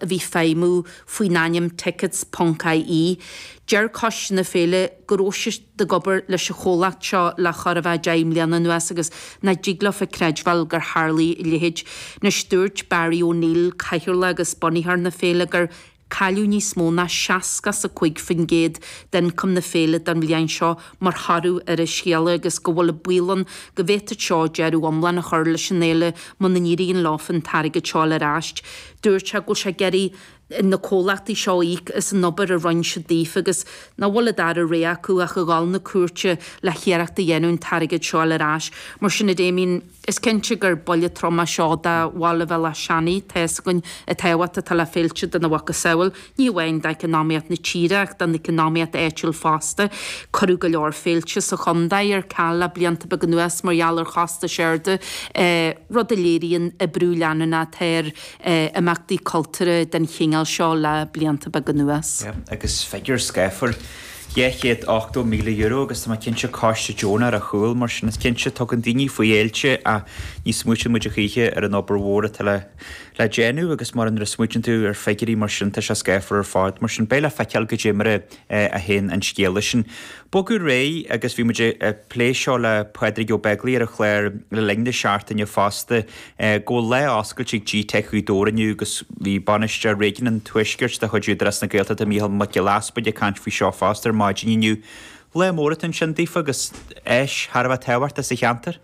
a bhí ag feidhmiú faoin ainm Tickets ponc IE. Deir coiste na féile go raibh siad ag obair leis an chomhlacht seo le chóir a bheith deich mbliana anuas agus nach dtig leofa a chreidbheáil gur tharlaigh a leithéid. Anois dúirt Barry O'Neill, cathaoirleach agus bunaitheoir na féile, gur cailleadh níos mó ná seasca is a cúig faoin gcéad d'ioncam na féile don bhliain seo mar thoradh ar an scéala agus go bhfuil an baol ann go bhféadfadh seo deireadh iomlán a chur leis an fhéile muna n-éiríonn leofa an t-airgead seo a fháil ar ais. Dúirt sé go bhfuil sé ag iarraidh ar na comhlachtaí seo íoc as an obair a rinne siad daofa agus nach bhfuil an dara rogha acu ach a dhul na cúirte le hiarracht a dhéanamh an t-airgead seo a fháil ar ais. Mar sin, a Damien, is cinnte gur buille trom é seo do bhaile Bhéal Átha Seanaidh, tá fhios againn, an tábhacht atá le féilte dena mhacasamhail. ní amháin d'eacnamaíocht na tíre ach don eacnamaíocht áitiúil fosta. Cuireadh go leor féilte sa chontae ar ceal le blianta beaga anuas mar gheall ar chostais arda, rud a léiríonn an brú leanúnach atá ar imeachtaí cultúrtha den chineál seo le blianta beaga anuas. Agus figiúr scáfar, €280,000, agus tá mé cinnte coiste deonach ar a chúl, mar sin is cinnte tugann daoine faoi fhéilte ach ní smaoiteann muid a choíche ar an obair mhór atá le le déanamh agus mar nuair a smaoitíonn tú ar figiúirí mar sin tá sé scáfar ar fad. Mar sin beidh le feiceáil goidé mar a théann an scéala sin. Bogadh ar aghaidh agus bhí muid ag plé seo le Pádraig Ó Beaglaoich ar an chlár le linn na seachtaine fosta go bhfuil lá oscailte ag G-Teic Ghaoth Dobhair inniu agus bhí Bainisteoir Réigiún an Tuaiscirt de chuid Údarás na Gaeltachta Micheál Mac Giolla Easbuig ag caint faoi seo fosta ar maidin inniu. Lá mór atá ansin daofa agus áis thar a bheith tábhachtach sa cheantar.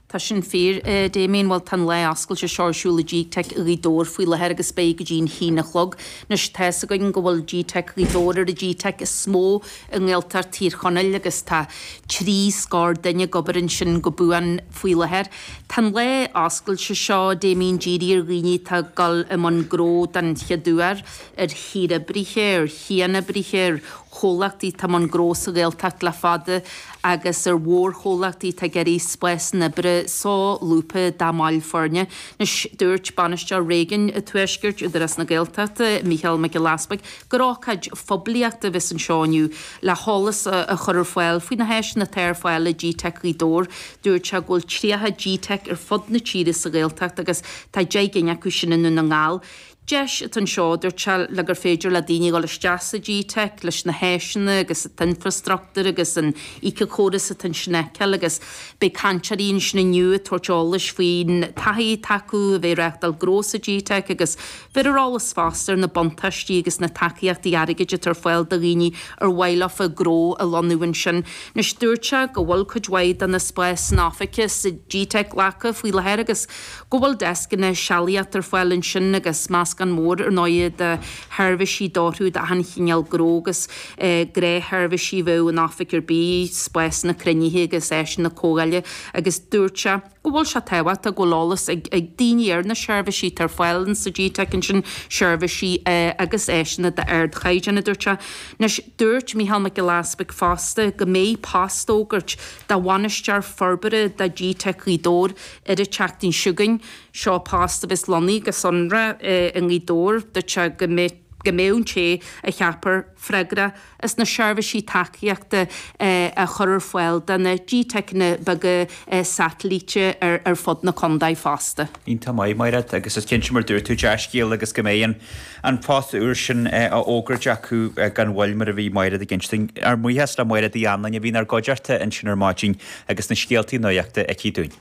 Tá sin fíor, a Damien. Bhuel, tá an lá oscailte seo ar siúl i G-Teic Ghaoth Dobhair faoi láthair agus beidh go dtí an haon a chlog. Anois, tá fhios againn go bhfuil G-Teic Ghaoth Dobhair ar an G-Teic is mó i nGaeltacht Thír Chonaill agus tá trí scór duine ag obair ansin go buan faoi láthair. Tá an lá oscailte seo, a Damien, dírithe ar dhaoine atá ag dul i mbun gnó den chéad uair, ar shaoroibrithe, ar chianoibrithe, ar. chomhlachtaí atá i mbun gnó sa Ghaeltacht le fada agus ar mhórchomhlachtaí atá ag iarraidh spásanna oibre solúbtha dá mbaill foirne. Anois dúirt bainisteoir réigiún an tuaiscirt Údarás na Gaeltachta, Mícheál Mac Giolla Easbuig, gur ócáid phoiblíochta a bheas anseo inniu le heolas a chur ar fáil faoi na háiseanna atá ar fáil i GTeic Ghaoth Dobhair. Dúirt sé go bhfuil 30 GTeic ar fud na tíre sa Ghaeltacht agus tá 10 gcinn acu sin i nDún na nGall. Deis atá anseo, a dúirt sé, le gur féidir le daoine dul isteach sa GTeic leis na háiseanna agus an t-infreastruchtúr agus an éiceachóras atá ansin a fheiceáil agus beidh cainteoirí ansin inniu ag tabhairt eolais faoin taithí atá acu a bheith ag reáchtáil gnó sa GTeic agus bheith ar eolas fosta ar na buntáistí agus na tacaíochtaí airgid atá ar fáil do dhaoine ar mhaith leofa gnó a lonnú ansin. Anois, dúirt sé go bhfuil cuid mhaith de na spásanna oifige sa GTeic glactha faoi láthair agus. Go bhfuil deascanna sealaíochta ar fáil ansin agus meascán mór ar ndóigh de sheirbhísí a d'fhóirfeadh d'achan chineál gnó agus gnáthsheirbhísí a bheadh in oifig ar bith spásanna cruinnithe agus áiseanna comhdhála agus dúirt sé go bhfuil sé tábhachtach go bhfuil eolas ag daoine ar na seirbhísí atá ar fáil in sna gteiceanna sin seirbhísí agus áiseanna d'ardchaighdeán dúirt sé. Anois dúirt Micheál Mac Giolla Easbuig fosta go mbeidh post á fhógairt do bhainisteoir forbartha do gteic Ghaoth Dobhair ar an tseachtain seo chugainn. Seo post a bheas lonnaithe go sonrach i nGaoth Dobhair dúirt sé go mbeidh go mbeidh an té a cheapfar freagrach as na seirbhísí tacaíochta a chur ar fáil do na gteiceanna beaga satailíte ar fud na contae fosta. Iontach maith, Máiréad, agus is cinnte mar dúirt tú, dea-scéal agus go mbeidh an. an post úr sin á fhógairt acu gan mhoill mar a bhí Maighread ag insint dúinn. Ár mbuíochas le Maighréad Uí Anluain a bhí inár gcuideachta ansin ar maidin agus na scéaltaí nuachta aici dúinn.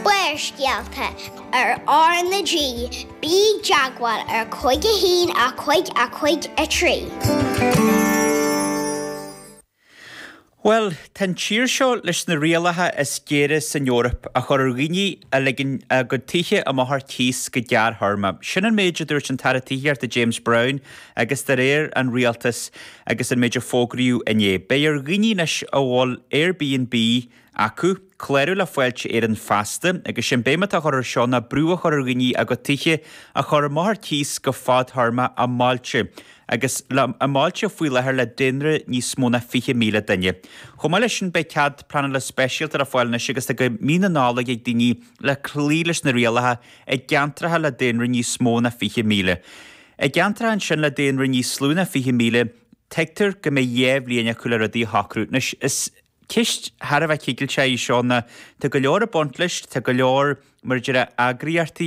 Barrscéalta ar R na G Bí i dteagmháil ar Cúig a hAon a Cúig a Cúig a Trí. Bhuel, tá an tír seo leis na rialacha is géire san Eoraip a chur ar dhaoine a ligeann a gcuid tithe amach ar cíos go gearrthéarma. Sin an méid a dúirt an tAire Tithíochta James Browne agus de réir an Rialtais agus an méid a fógraíodh inné, beidh ar dhaoine anois a bhfuil Airbnb a acu, clárú le Fáilte Éireann feasta agus sin béim atá á cur air seo ná brú a chur ar dhaoine a gcuid tithe a chur amach ar cíos go fadthéarma i mbailte agus i mbailte faoi láthair le daonra níos mó ná 20,000 duine. Chomh maith leis sin beidh cead pleanála speisialta le fáil anois agus tá go mí na Nollag ag daoine le cloí leis na rialacha i gceantracha le daonra níos mó ná 20,000. I gceantracha ansin le daonra níos lú ná 20,000 tuigtear go mbeidh dhá bhliain acu le rudaí a shocrú. Anois is. Ceist thar a bheith cigilteach í seo. Tá go leor ag baint leis, tá go leor, mar a déarfá eagraíochtaí,